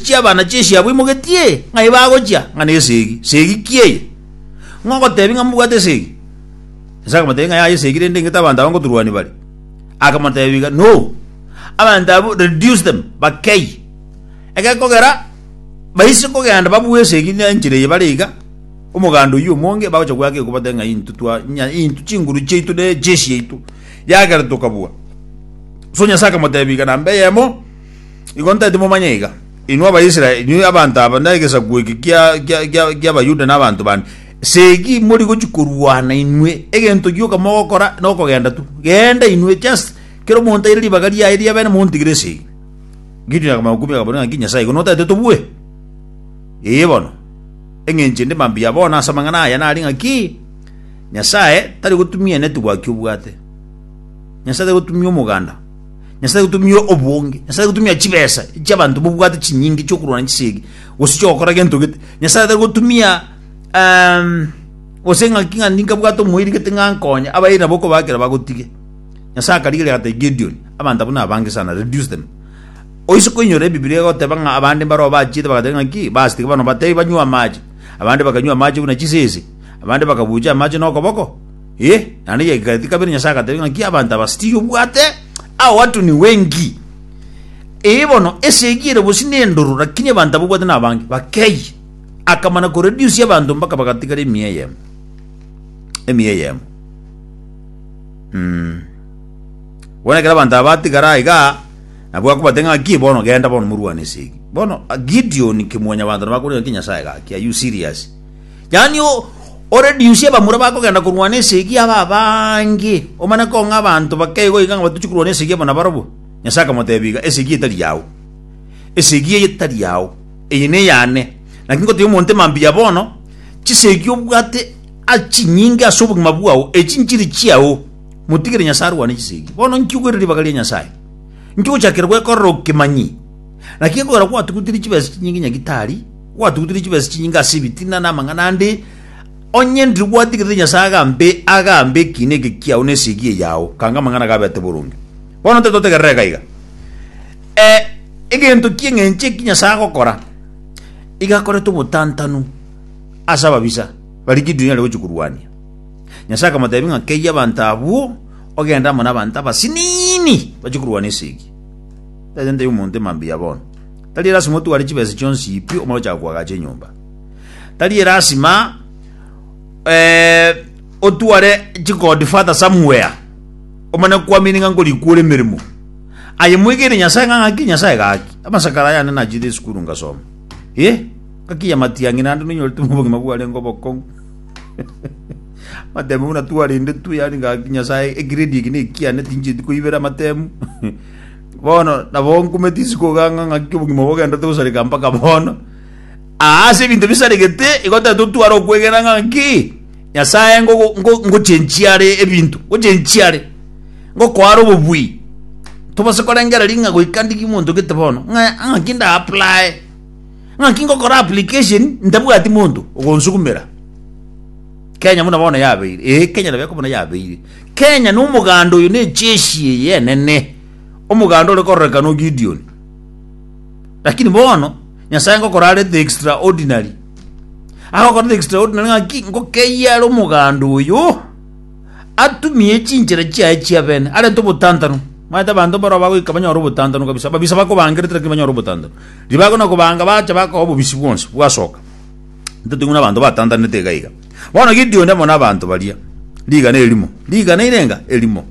Chi'abana chi'echiabo imogetie ng'ai bagochia, ng'a nesegi, segi ki eye? Ng'a ogotebia ng'a mbwate esegi? Yeso akamotebia ng'a yaya esegi rende ing'ete abanto aba ngoturwani bare. Akamotebia, No, abanto abwo reduce them, bakeyie. Egekogera baise kogenda babue esegi ne enchera eye bare iga, omoganda oyio omonge bagocha goaka egekuba bateba ng'a intwe twa ng'a intwe chinguru chiaito ne chiechiaito. Yagera tokabua. So Nyasae akamotebia iga namba eyemo. Igo ntaete momanye iga, inwe Abaisraeli, inwe abanto aba, na egesaku eke kia- kia- kia- ki'Abayuda na abanto bande, segi mori gochia korwana inwe, egento gioka mogokora nokogenda tu. Genda inwe, just kera omonto aire ribaga riaye ri'abene montigire esegi. Gideoni akamanya kumia akaboria ng'a, Inki Nyasae, igo notaete tobue? Ee bono, eng'encho ende mambia bono ase amang'ana aya nare ng'aki, Nyasae tari gotumia eneti gwaki obwate. Nyasae tari gotumia omoganda. Nyasae agotumia obonge, Nyasae agotumia chibesa chi'abanto bobwate chinyinge chi'okorwana ne chisegi, gose chi'ogokora gento gete. Nyasae atari gotumia um, gose ng'aki ng'a ninkabwate omoiri gete ng'a nkonye, abairi nabo okobakera bagotige. Nyasae akarigeria agatebia Gideon, abanto abwo nabange sana, reduce them. Oise koinyora Ebibilia egoteba ng'a abande mbarao bachiete bagateba ng'aki, basi tiga bano batebi banywe amache. Abande bakanywa amache buna chisese, abande bakabucha amache nokoboko. Ee, naende giaikaretie kabere Nyasae agatebia ng'aki abanto aba stiri obwate ao watu ni wengi. Ee bono, esegi ere bosio nendoro, lakini abanto aba obwate nabange, bakeyie. Akamana koredusia abanto mpaka bagatigara emia eyemo. Emia eyemo. Mm. Bono ekero abanto aba batigara aiga, nabwo akobate ng'aki bono genda bono morwane esegi. Bono ah, Gideon kimwanyabanto nabo akorora ng'aki Nyasae gaki, are you serious? Yaani o- oreduce abamura bakogenda korwana esegi abe abange, omanye kong'a abanto bake igo iga ng'a batochi korwana esegi abo nabarabwo. Nyasae akamotebia iga, Esegi etari yao, esegi eye tari yao, eye neyane. Naki ngotebi omonto ime mbuya bono, chisegi obwate ase chinyinge ase obogima bwao, echi nchiri chiao, motigere Nyasae arwane chisegi. Bono inki ogoire ribaga ria Nyasae? Inki ogochakera gwekorera okemanyi? Naki ekogera gwatugutire chibesa chinyinge nyagitari, Gwatugutire chibesa chinyinge ase ebitina na amang'ana ande, onye ndiri gwatigerete Nyasae agambe agambe ekiina eke kiao na esegi eye yao, kanga amang'ana gaberete boronge. Bono tetotegerera iga iga. Eh, egento ki eng'encho eki Nyasae agokora? Iga akorete obotantanu ase ababisa baria Gideoni are gochia korwania. Nyasae akamotebia ng'a keyie abanto abwo ogende amo nabanto abasiniini bachie korwana esegi. Tari sente y'omonto emambia ya bono. Tari elasima otware chibesa chionsi pi omare ochaka koagacha enyomba. Tari elasima eh, otware chikodi fata somewhere omane kwamini ng'a nkorikure emeremo. Aye mwegere Nyasaye ng'a ng'aki Nyasaye gaki. Amasakara yane nachire esukuru ngasoma. Eh, ngakiya matiang'i nande nonyorete obogima bwarenge obokong'u. matemu buna twarende tu yani ngaki nyasaye egrade eki nekiane tincheti koibera matemu Bono nabo nkumete isiko oganga ng'aki obogima obo bogendete gosareka mpaka bono. Aa ase ebinto bisaregete igo tatotwara okwegena ng'aki Nyasae ngo- ngo- ngochenchia are ebinto ngochenchia are ngokoara obobui tobase korengera ring'a goika ndiri monto gete bono ng'a ng'aki nda apply ng'aki ngokora application ntabwati monto ogonsukumera Kenya buna bono yabeire, eh Kenya nabo ekobuna yabeire. Kenya nomoganda oyo necheshi eye enene, omoganda ore kororekana o Gideoni. Lakini bono Nyasae ngokora are the extraordinary. Agokora the extraordinary ng'aki ngokeyia are omoganda oyo atumie chinchera chiaye chiabene arente obotantanu. Maete abanto mbaro bagoika banyore obotantanu kabisa. Ababisa bakobangerete lakini banyore obotantanu. Ribago na kobanga bacha bakoa obobisi bwonsi bwasoka. Ntotigwe na abanto batantanete iga iga. Bono Gideoni amo nabaanto baria rigana erimo, rigana irenga erimo,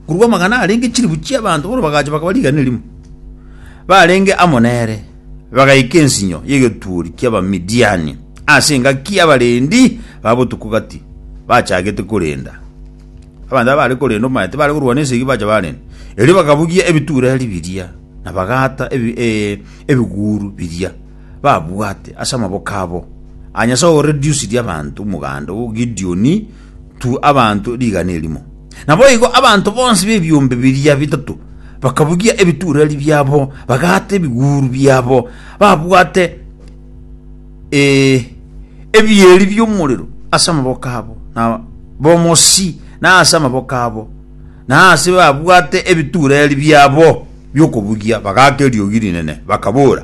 korwa amagana arenge chilifu chi'abaanto bono bagacha bakaba rigana erimo, barenge amo nere, bagaika ensinyo y'egetuuri ki'Abamidiani ase engaki y'abarendi ba botuko gati, bachagete korenda. Abanto aba baare korenda omaete baare korwana esegi bacha barenda. Erio bakabugia ebituureri biria, na bagaata ebi- eh, ebiguuru biria. babwate ase amaboko abo, a Nyasae o reduced abanto omoganda o Gideoni to abanto rigana erimo. Naboigo abanto bonsi b'ebiombe biria bitato bakabugia ebitureri biabo, bagaata ebiguru biabo, babwate e ebieri bi'omorero ase amaboko abo, na bomosi na ase amaboko abo, na ase babwate ebitureri biabo bi'okobugia, bagaaka eriogi rinene, bakabora,